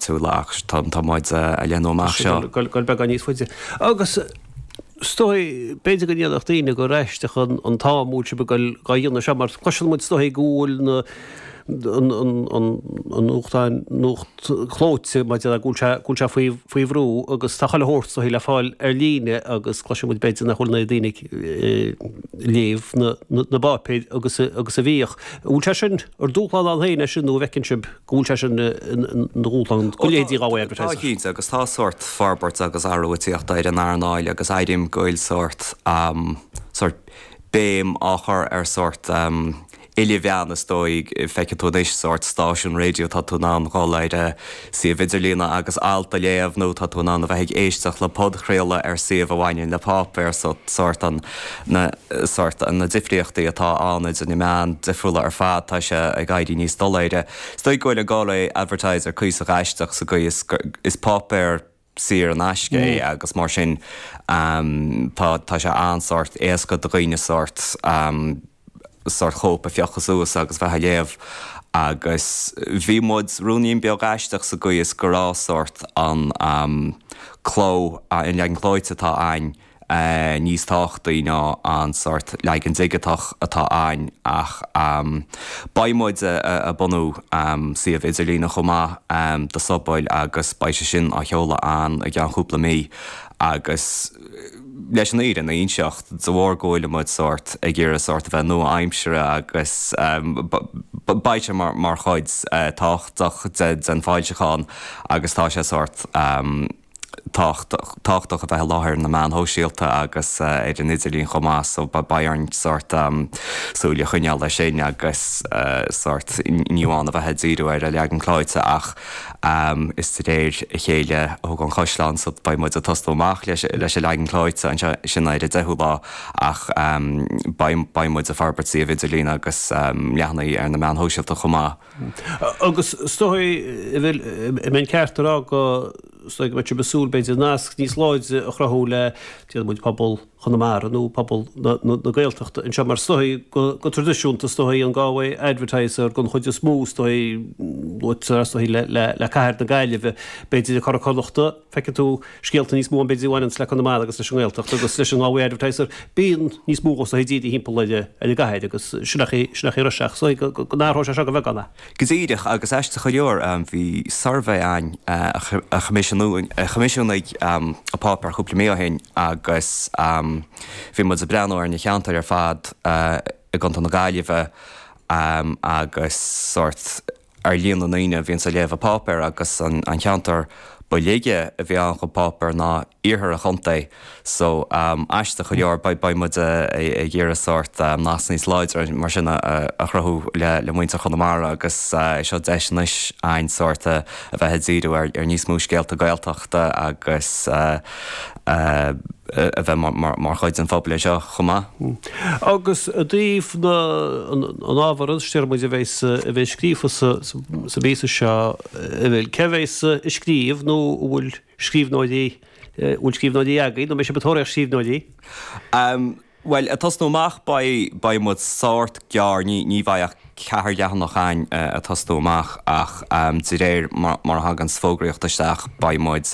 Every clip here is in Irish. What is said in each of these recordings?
Súil ach tá an t-adhmad a leathnú amach seo. Go raibh beagán níos faide. Agus is dóigh, b'fhéidir go ndéarfadh daoine gur aisteach an t-am a bhfuil sibh dá dhéanamh seo, mar cloiseann muid is dóigh go bhfuil na, an, an nuacht, nuacht clóite mar a déarfá go bhfuil sé faoi bhrú agus tá chuile shórt is dóigh le fáil ar líne agus cloiseann muid b'fhéidir nach bhfuil na daoine ag léamh na bpáipéar agus a bhíodh. An bhfuil sé sin ina dhúshlán ann féin é sin nó an bhfeiceann sibh? go bhfuil sé sin ina dhúshlán do leithéidí Galway Advertiser. Tá cinnte, agus tá sórt forbairt agus athrú ag tíocht ar an earnáil agus airím go bhfuil sórt sórt béim á chur ar sórt ilmheáin is dóigh. Feicfidh tú anois sórt stáisiún raidió, tá tú in ann dhul ar a suíomh idirlín agus alt a léamh nó tá tú in ann a bheith ag éisteacht le podchraoladh ar shuíomh a bhaineann le páipéar so sórt an na sórt, na difríochtaí atá ann idir na meáin difriúla ar fad, tá sé ag éirí níos doiléire. Is dóigh go bhfuil an Galway Advertiser cuíosach aisteach sa gcaoi is gur, is páipéar saor in aisce é agus mar sin tá, tá sé an-sórt éasca do dhaoine sórt. sórt cóip a phiocadh suas agus bheith á léamh agus bhí muid rúinín beag aisteach sa gcaoi is go raibh sórt an cló, an leagan clóite atá a'ainn níos tábhachtaí ná an sórt leagan digiteach atá a'ainn ach beidh muid a' bunú suíomh idirlín chomh maith do Soisbeighl agus beidh sé sin á sheoladh ann i gceann cúpla mí agus. leis an fhírinne a inseacht de bharr go bhfuil muid sórt ag iarraidh sórt a bheith nua-aimseartha agus beidh sé mar chuid tábhachtach den foilseachán agus tá sé sórt tábhachtach a bheith i láthair ar na meáin shóisialta agus ar an idirlíon chomh maith so beidh orainn sórt súil a choinneáil air sin agus sórt ní amháin a bheith ag díriú ar an leagan clóite ach Is de réir a chéile a thógtar na caisleáin so beidh muid ag tosnú amach leis an leagan clóite anseo, sin é ar an 10ú lá ach beidh muid ag forbairt suíomh idirlín agus leathanaigh ar na meáin shóisialta chomh maith. Agus is dóigh an bhfuil mé ceart a rá go, is dóigh go mbeidh sibh ag súil b'fhéidir nasc níos láidre a chruthú le, déarfaidh muid, pobal, Chonamara nó pobal na Gaeltachta anseo mar is dóigh go traidisiúnta is dóigh an Galway Advertiser don chuid is mó is dóigh luaitear is dóigh le cathair na Gaillimhe b'fhéidir le Curadh Connachtach feicfidh tú scéalta níos mó ann b'fhéidir a bhaineanns le Conamara agus leis an nGaeltacht agus leis an Galway Advertiser bíonn níos mó is dóigh díriú timpeall ar an gcathair agus sin sin nach raibh seans is dóigh go go n-athróidh sé seo go beagán a. Go díreach agus aisteach go leor, bhí suirbhé ann a choimisiúnaigh an páipéar cúpla mí ó shin agus bhí muid ag breathnú ar na ceantair ar fad i gContae na Gaillimhe agus sórt ar líon na ndaoine a bhíonns ag léamh an pháipéir agus an ceantar ba laige a bhí ann chun páipéar ná iarthar an chontae. So, aisteach go leor, beidh muid ag iarraidh sórt nasc níos láidre mar sin a chruthú le muintir Chonamara agus é seo deis anois a'ainn sórt a bheith ag díriú ar níos mó scéalta Gaeltachta agus a bheith mar chuid den phobail anseo chomh maith. Agus i dtaobh na, an ábhar a deir muid a bheidh sa, a bheidh scríofa sa bpíosa seo, cé a bheas ag scríobh nó an bhfuil, scríbhneoirí, bhfuil scríbhneoirí agaibh nó mbeidh sibh ag tóraíocht scríbhneoirí? Bhuel, ag tosnú amach beidh muid sórt gearr, ní bheidh ach ceathair leathanach againn ag tosnú amach ach de réir mar a thaganns fógraíocht isteach beidh muid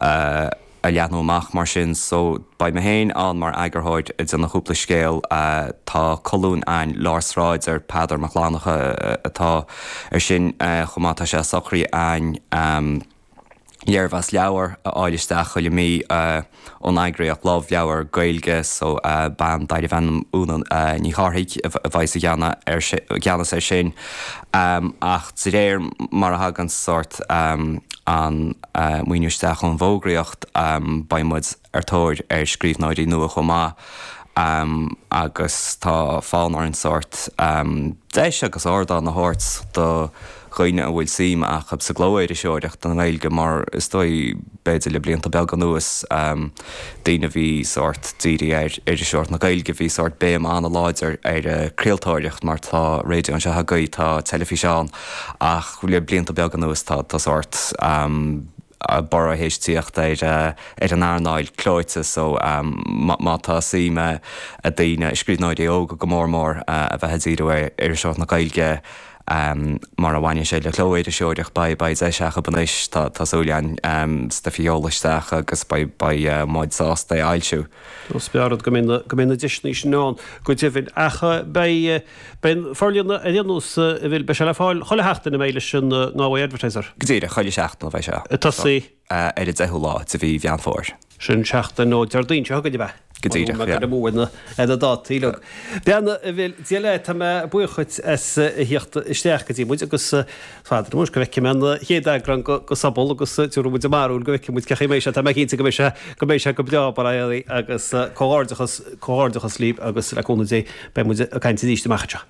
ag leathnú amach mar sin so beidh mé féin ann mar eagarthóir ag déanamh cúpla scéal, tá colún againn Lár Sráide, Peadar Mac Fhlannchadha atá ar sin chomh maith tá sé socraithe againn. léirmheas leabhar a fháil isteach chuile mí ón eagraíocht Love Leabhar Gaeilge. So, bean darbh ainm Úna Ní Chárthaigh a bheas i gceannas ar sin. Ach de réir mar a thagann sórt an maoiniú isteach ón bhfógraíocht, beidh muid. ar tóir ar scríbhneoirí nua chomh maith agus tá fonn orainn sórt deis agus ardán a thabhairt do dhaoine a bhfuil suim acu sa gclóiriseoireacht i nGaeilge mar is dóigh, b'fhéidir le blianta beaga anuas, daoine a bhí sórt dírithe ar iriseoireacht na Gaeilge, bhí sórt béim an-láidir ar an gcraoltóireacht mar tá raidió anseo agaibh, tá teilifís ann ach le blianta beaga anuas tá sórt. borradh théis tíocht ar an earnáil clóite so má tá suim ag daoine, scríbhneoirí óga go mór mór, a bheith ag díriú ar iriseoireacht na Gaeilge mar a bhaineann sé le cló-iriseoireacht beidh deis acu anois tá súil agam stuif a sheoladh isteach agus beidh muid sásta é a fhoilsiú. Is breá an rud go mbeidh na deiseanna sin ann go deimhin ach beidh Beidh an forlíonadh ar aon nós an bhfuil beidh sé le fáil chuile sheachtain an mbeidh leis an nGalway Advertiser. Go díreach, chuile sheachtain a bheidh sé. Ag tosaí. Ar an deichiú lá de mhí Mheán Fómhair. Sin seachtain ón Déardaoin seo chugainn, ab ea? Go díreach, yeah. Mura mbeadh mé amú ar na dátaí, yeah. Bean a bhfuil Dia leat, tá mé buíoch díot as a thíocht isteach go dtí muid agus Anois go bhfeicfidh mé an chéad eagrán de Sobal agus tiubhraidh muid ár mbarúil go bhfeicfidh muid cén chaoi a mbeidh sé, tá mé cinnte go mbeidh sé, go mbeidh sé go breá bar é Aodh agus comhghairdeachas, comhghairdeachas libh agus le cúnamh Dé beidh muid ag caint arís amach anseo.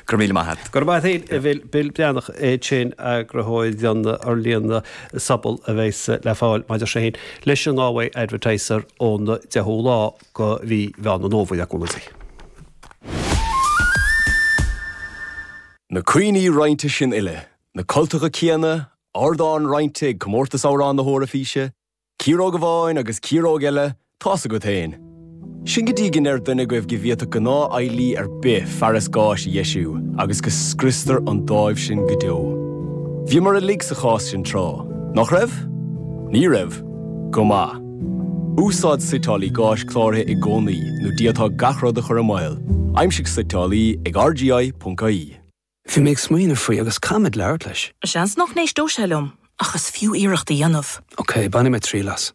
Go raibh míle maith a't. Go raibh maith a't a Bhill, Bill Breathnach é sin eagarthóir don fhorlíonadh Sobal a bheidhs le fáil maidir sé sin leis an Galway Advertiser ón 10ú lá de mhí Mheán an Fhómhair le cúnamh Dé. Na cuimhní roinnte sin uile, na cultacha céanna, ardán roinnte ag Comórtas Amhrán na hEoraifíse, ciaróg amháin agus ciaróg eile, tá's agat féin. Sin go dtí go ndeireann duine agaibh go bhféadfadh gnáthfheighlí ar bith fearas gáis a dheisiú agus go scriostar an dáimh sin go deo. Bhíomar uilig sa chás sin tráth, nach raibh? Ní raibh? Go maith. Úsáid suiteálaí gáis cláraithe i gcónaí nó d'fhéadfá gach rud a chur i mbaol. Aimsigh suiteálaí ag RGI.ie. Bhí mé ag smaoineamh faoi agus caithfidh mé labhairt leis. Seans nach n-éistfeadh sé liom ach is fiú iarracht a dhéanamh. Ok, bainfidh mé triail as.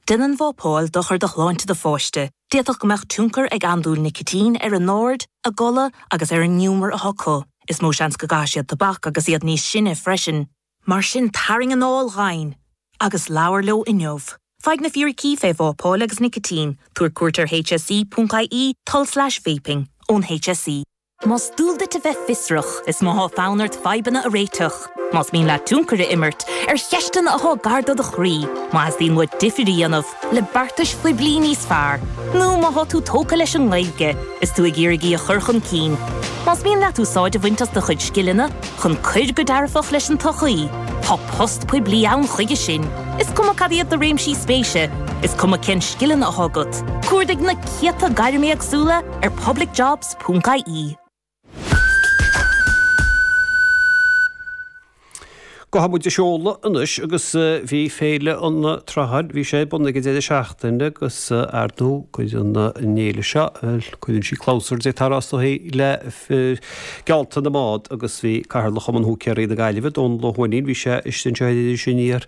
Déanann vapáil dochar do shláinte do pháiste, d'fhéadfadh go mbeadh tionchar ag andúil nicitín ar a n-aird, a gcodladh agus ar an ngiúmar atá acu. Is mó seans go gcaithfidh siad tobac agus iad níos sine freisin. Mar sin tarraing anáil dhomhain agus labhair leo inniu. Faigh na fíricí fé vápáil agus nicitín, tabhair cuairt ar HSE.ie, tulslais vaping, ón HSE. Más dual duit a bheith fiosrach is má thá fonn ort fadhbanna a réiteach, más mian leat tionchar a imirt ar cheisteanna athá gar do do chroí, má teastaíonn uait difir a dhéanamh, le beartais poiblí níos fearr nó má thá tú tógtha leis an nGaeilge is tú ag iarraidh í a chur chun cinn, más mian leat úsáid a bhaint as do chuid scileanna chun cur go dearfach leis an tsochaí, tá post poiblí ann chuige sin, is cuma cad iad do réimsí spéise, is cuma cén scileanna athá agat, cuardaigh na céadta gairm éagsúla ar publicjobs.ie. Gabhfaidh muid ag seoladh anois agus bhí Féile an tSrutháin, bhí sé ar bun ag an deireadh seachtaine agus ar ndú cuid den fhéile seo, cuireann sí clabhsúr de shórt eicínt le geallta na mbád agus bhí Cathaoirleach Chumann Húicéaraí na Gaillimhe, Dónal Ó hUaithnín, bhí sé istigh anseo ag Sinéad.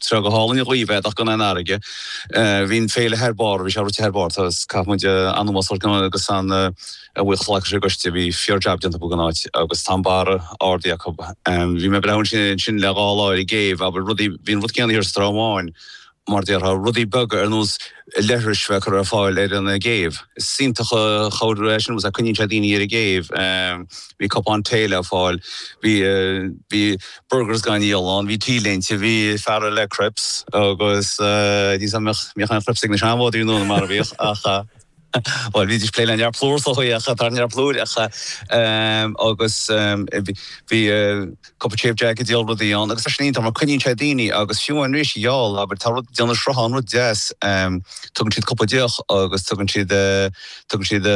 Tá go hálainn a Dhuibh é ach gan aon fharraige. Bhí an féile thar barr, bhí sé rite thar barr agus caithfidh muid an-mheas a thabhairt agus an-bhuíochas a ghlacadh leis an gcoiste, bhí fíor jab déanta acu den áit agus tá an barr ardaithe acu. Bhí mé ag breathnú ansin le dhá lá ar an gcéibh, abair rudaí, bhí an rud céanna thiar sa Trá Bháin mar déarfá, rudaí beaga ar nós leithris bheith curtha ar fáil ar an gcéibh. Is iontach an chabhair é sin agus coinníonn sé daoine ar an gcéibh. Bhí cupán tae le fáil, bhí bhí burgers dhá ndíol ann, bhí T-léinte, bhí fear le crepes agus níl fhios agam an mbeadh mbeadh an crepes ag na seanfhondúirí mar a bhíodh ach bhuel bhídís plé le neart plúr sa chaoi ach tá neart plúr ach agus bhí Cúpla dream acu ag díol rudaí ann agus tá sé sin iontach mar coinníonn sé daoine agus fiú an réir geall abair tá rud déanann Sruthán rud deas tugann siad cúpla deoch agus tugann siad tugann siad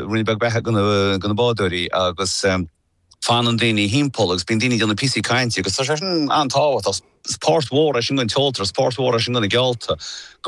ruainne beag beatha go go na bádóirí agus fanann daoine thimpeall agus bíonn daoine ag déanamh píosaí cainte agus tá sé sin an-tábhachtach. Is páirt mhór é sin don chultúr is páirt mhór é sin do na geallta